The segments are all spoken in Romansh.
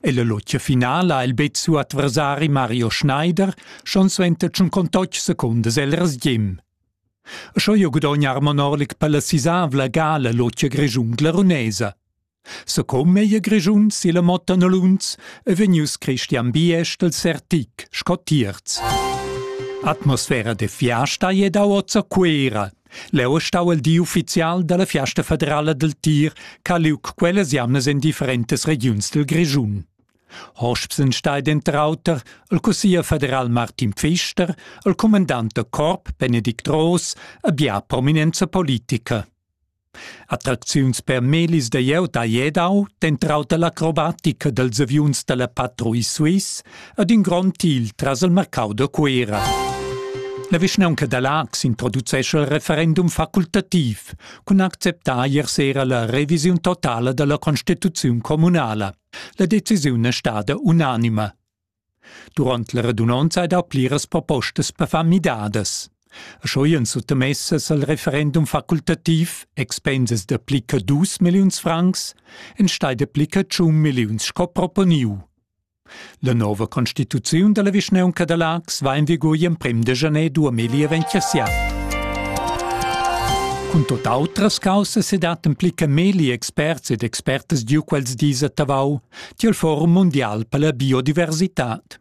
Ella lotga finala ha el bet siu adversari Mario Schneider schon suenter tschun contotg secundas el resgim. Scho jo gudogna Armon Orlik per la sisavla gala lotga Grischun glarunesa. Secom ei Grischun silla motta Nolunz e vegnius Christian Biest del Sertic, sco tierz. Atmosfera de fiasta è da ozza Cuera, Leu ei stau il di ufficial dalla fiasta federala dil tir che ha liug quellas jamnas en differentas regiuns dil Grischun. Hosps stai denter auter il cussier federal Martin Pfister, il cumandant da corp Benedikt Roos e bia prominenza politica. Attracziuns per melis da jeu da Jedau, dentro auter l'acrobatica dels aviuns dalla patruille suisse, ad ün grond til tras il marcau da Cuera. La vischnaunca da Laax introducescha il referendum facultativ cun acceptar ier sera la revisiun totala dalla constituziun communala. La decisiun è stada unanima. Durant la redunanza ha dà pliras propostas per far midadas. Schoien suttamessas al referendum facultativ expensas da plica dus milliuns francs, en stai da plica tschun milliuns sco proponiu. La nova constituziun dalla vischnaunca da Laax va en vigur gl'emprem de janer 2027. Cun tot outras caussas ed at implica meli experts ed expertas diu quels dis a Tavau tiel Forum Mundial per la biodiversitad.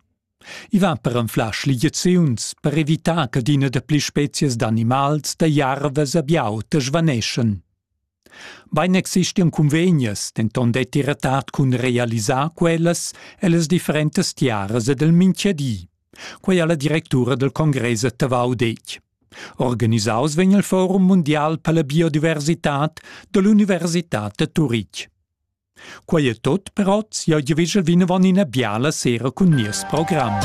I va per anflar schligiaziuns per evitar che adina da pli spezias d'animals, da jarvas a biau svaneschan. Bein existian cunvegnas, denton detti retard cun realisar quellas ellas differentas tiaras ed el mintgadi. Quei ha la directura del congress a Tavau detg. Organisaus vegn il forum mundial per la biodiversitad dall'universitad da Turitg. Quei è tot per oz. Eu giavegel vinavon ina biala sera cun nies program.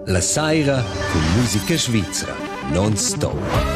La saira cun musica svizra non stop.